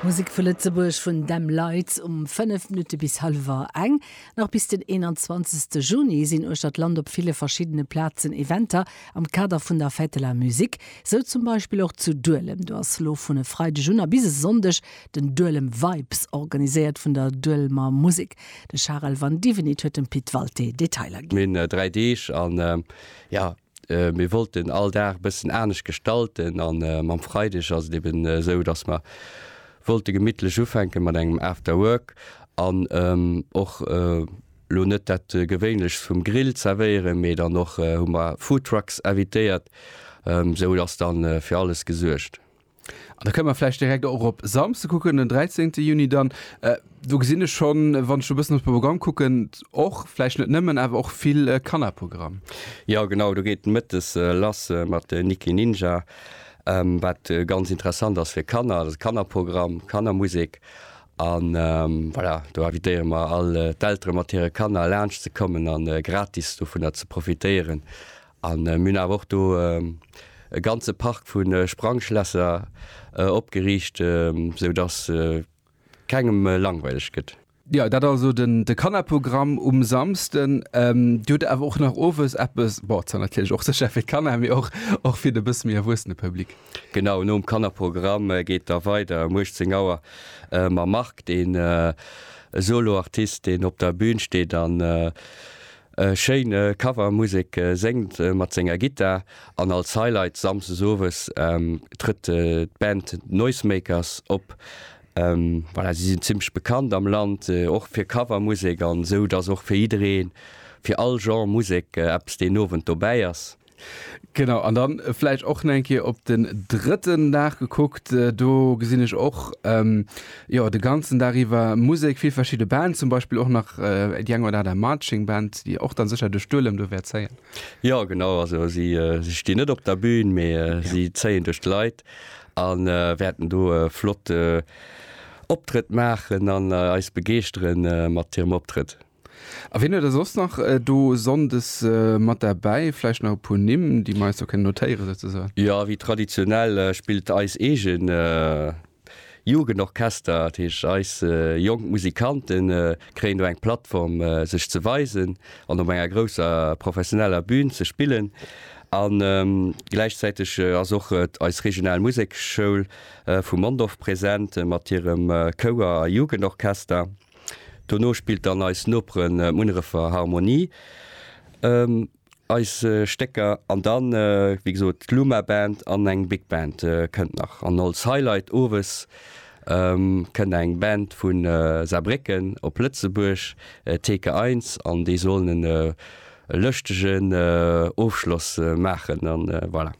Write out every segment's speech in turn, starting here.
Musek vu Lëtzebuerg vun Them Lights um 5 Minutte bis hallwer eng. Nach bis den 21 Juni sinn uechter d'Land op ville verschiddene Plazen Eventer am Kader vun der Fête de la Musique. Sou zum Beispill och zu Duelem. Do ass lo vun e Freideg un a bis e Sonndeg den Duelem Vibes, organiséiert vun der Duelmer Musek. De Charel Vandivinit huet dem Pit Walté Detailer ginn. Mir hunn 3 Deeg an jo, Mir wollt den all Dag bëssen anescht gestalten an mam Freideg ass et eben esou, dass mer wollte gemittlech ufänke mat engem After Work an och lo net dat gewéinlechst vum Grill zerwéieren, mee dann och hu mer Food Trucks invitéiert. Esou ass dann fir alles gesuergt. An da kënne mer vläicht direkt och op Samsde kucken, den 13. Juni dann. Do gesinn ech schonn, wann ech e bëssen op de Programm kucken, och, vläicht net nëmmen, awer och vill Kannerprogramm. Jo, genau, do geet mëttes lass mat Niki Ninja, wat ganz interessant ass fir Kanner. Dat ass e Kannerprogramm, Kannermusek. A voilà, do invitéiere mer all d'Eltere mat hire Kanner laanscht ze kommen a gratis dovunner ze profitéieren. A mir hunn awer och do e ganze Park vu Sprangschlässer opgeriicht, sou datt kengem langweileg gëtt. Jo, dat also de Kannerprogramm um Samsden. Dir hutt awer och nach owes eppes, bon, zwar natierlech och sécher fir d'Kanner, mee och fir de bësse méi erwuessene Public. Genau, nom Kannerprogramm geet da weider um 18 Auer mam Marc, deen e Soloartist, deen op der Bün steet an E schéine Cover, Musek séngt mat senger Gittar an als Highlight Samsdes Owes trëtt d'Band Noisemakers op. Voilà, si sinn zimmlech bekannt am Land och fir Cover Musek an esou dass och fir jidderee, fir all Genre Musek eppes deen Owend dobäi ass. Genau, an dann äh, vläicht och nach eng Kéier op den drëtten Dag gekuckt. Äh, do gesinn ech och ähm, jo, de ganzen Dag iwwer Musek, vill verschidde Band, zum Beispill och nach äh, déi eng oder aner Marching Band, déi och dann sécher de Stuerlem do wäert zéien. Ja genau, also si, äh, si stinn net op der Bühn, mee äh, ja. si zéien duerch d'Leit an äh, wäerten do äh, flott äh, Optrëtt maachen an äh, eis begeeschteren äh, mat hirem Optrëtt. A wien huet der soss nach do Sonndes mat derbäi? Vläicht nach e puer Nimm, déi mer eis do kënnen notéieren, souzesoen? Jo, wéi traditionell spillt eis eege Jugendorchester. Dat heescht, eis jonk Musikante kréien do eng Plattform, sech ze weisen an op enger grousser professioneller Bün ze spillen. A gläichzäiteg ass och eis regional Musekschoul vu Mondorf present mat hirem Chouer a Jugendorchester. Dono spillt dann eis Nopere Munnerefer Harmonie eis Stécker an dann, wéi gesot, d'Luma Band an eng Big Band kënnt nach. An als Highlight owes kënnt eng Band vu Saarbrécken op Lëtzebuerg, Theke Eins, an déi sollen e lëschtegen Ofschloss maachen. Voilà.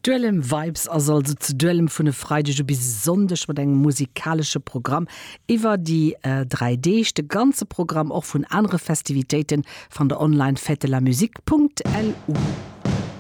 Duelem Vibes ass also zu Duelem vun e Freideg u bis e Sonndeg mat engem musikalesche Programm iwwer déi 3 Deeg. De ganze Programm, och vun anere Festivitéiten, fannt der online, fête-de-la-musique.lu.